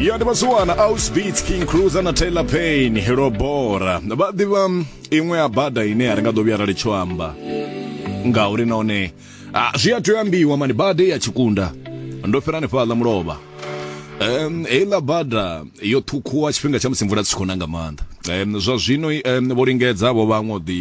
ya ndi vhasiwana ausbits king cruiser na taylor pain hilo bora vha ḓivha mm, iṅwe ya bada ine a ri nga ḓo vhuya ra litsho amba ngauri nahone ah, zwi a tea ambiwa mani bada ya tshikunda ndo fhira hanefhaḽa mulovha Um, heiḽa bada yo ṱhukhuwa tshifhinga tsha musi mvula dzi tshi khou na nga maanḓa um, zwa zwino um, vho lingedza vho vhaṅwe u ḓi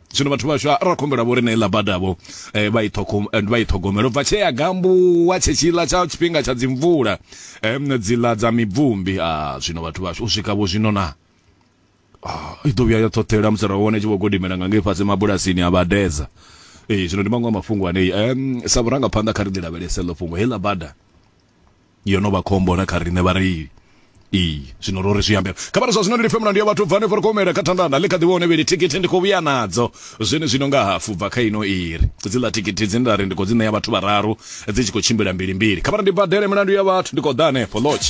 zwino vhathu vhashu ra khumbela vho ri na iḽa badavho eh, vha i ṱhogomela u bva tshee ya gambuwa tshetshiḽa tsha tshifhinga tsha dzimvula eh, dziḽa dza mibvumbi a ah, zwino vhathu vhashu u swika vho zwino na ah, i ḓo vhuya ya ṱhoṱhela musi ra wane tshi vho godimela nga ngei fhasi mabulasini a vhadedza ee eh, zwino ndi maṅwe a mafhungo anei um sa vhurangaphanḓa kha ri ḓi lavhelese ḽo fhungo heiḽa bada yo no vha khombo na kha riṋe vhareili ee zwino ro ri zwi ambela kha vhari zwa zwino ndi lifhe mulandu ya vhathu bvani ri khou humela kha thandana ḽi kha ḓi vhone vheli thikhithi ndi khou vhuya nadzo zwene zwino nga hafu bva kha ino iri dziḽa thikhithi dzine nda ri ndi khou dzi ṋea vhathu vhararu dzi tshi khou tshimbila mbili mbili kha vhari ndi badele milandu ya vhathu ndi khou ḓa hanefho lodge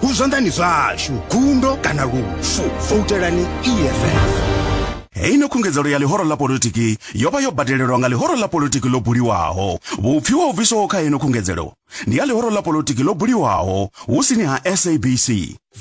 hu zwanḓani zwashu gundo kana lufu voutelani eff heyi no khungedzelo ya ḽihoro ḽa politiki yo vha yo badelelwa nga ḽihoro ḽa politiki ḽo buliwaho vhupfi wa u bviswaho kha heno khungedzelo ndi ya ḽihoro ḽa politiki ḽo buliwaho hu sini ha sabc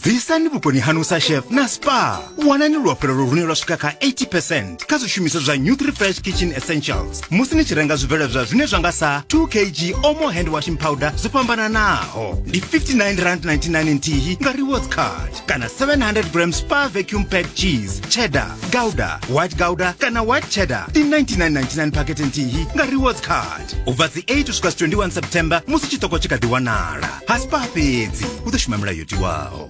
bvisani vhukoni hanu sa chef na spa wanani luafhulelo lune lwa swika kha 80 percent kha zwishumiswa zwa new refresh kitchen essentials musi ni tshi renga zwibveledzwa zwine zwa nga sa 2 kg omo hand washing powder zwo fhambananaho ndi 59 rand 99 nthihi nga rewards card kana 700 gram spa vacuum pack cheese cheddar gouda white gouda kana white cheddar ndi 9999 pakete nthihi nga rewards card u bva dzi 8 u swika 21 september musi tshiṱoko tshi kha ḓi wanala ha spa fhedzi u ḓo shuma milayo yo tiwaho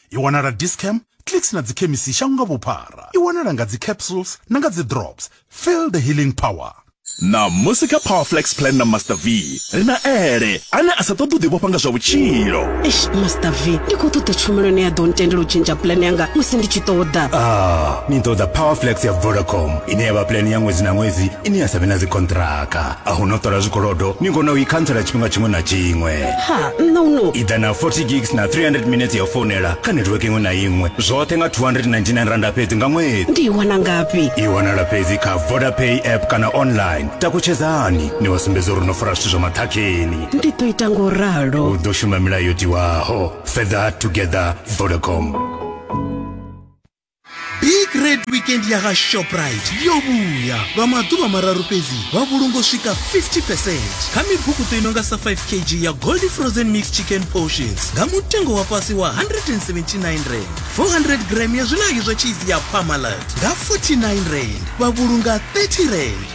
i wanala discam clicks na dzikhemisi shango nga vhuphara i wanala nga dzicapsules na nga dzidrops feel the healing power na musi kha powerflex plan na master v ri na ele ane a sa ṱoḓi u ḓivhofha nga zwa vhutshilo eish master v ndi khou ṱoḓa tshumelo ine ya ḓo ntendela u tshintsha plan yanga musi ndi tshi ṱoḓa ah ni ṱoḓa powerflex ya vodacom ine ya vha plan ya ṅwedzi na ṅwedzi ine ya sa vhe na dzikontraka a hu no ṱola zwikolodo ni kona u i khantsela tshifhinga tshiṅwe na tshiṅwe ha nṋe uno ida na 40 gigs na 300 minutes ya founela kha network iṅwe na iṅwe zwoṱhe nga 299 randa fhedzi nga ṅwedzi ndi i wana ngafhi i wanala fhedzi kha vodapay app kana online takutshedzani ni vha sumbedza uri no fara zwithu zwa maṱhakheni ndi ḓo ita ngo ralo u ḓo shuma milayo tiwaho further together vodacom big red weekend ya ha shoprite yo vhuya lwa maḓuvha mararu fhedzi vha vhulunga u swika 50 percent kha mibukuṱo i nonga sa 5 kg ya gold frozen mix chicken portions nga mutengo wa fhasi wa 179 rand 400 gram ya zwilangi zwa cheese ya pamalat nga 49 rand vha vhulunga 30 rand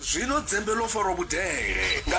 Zwino dzembe ḽo farwa vhudele nga.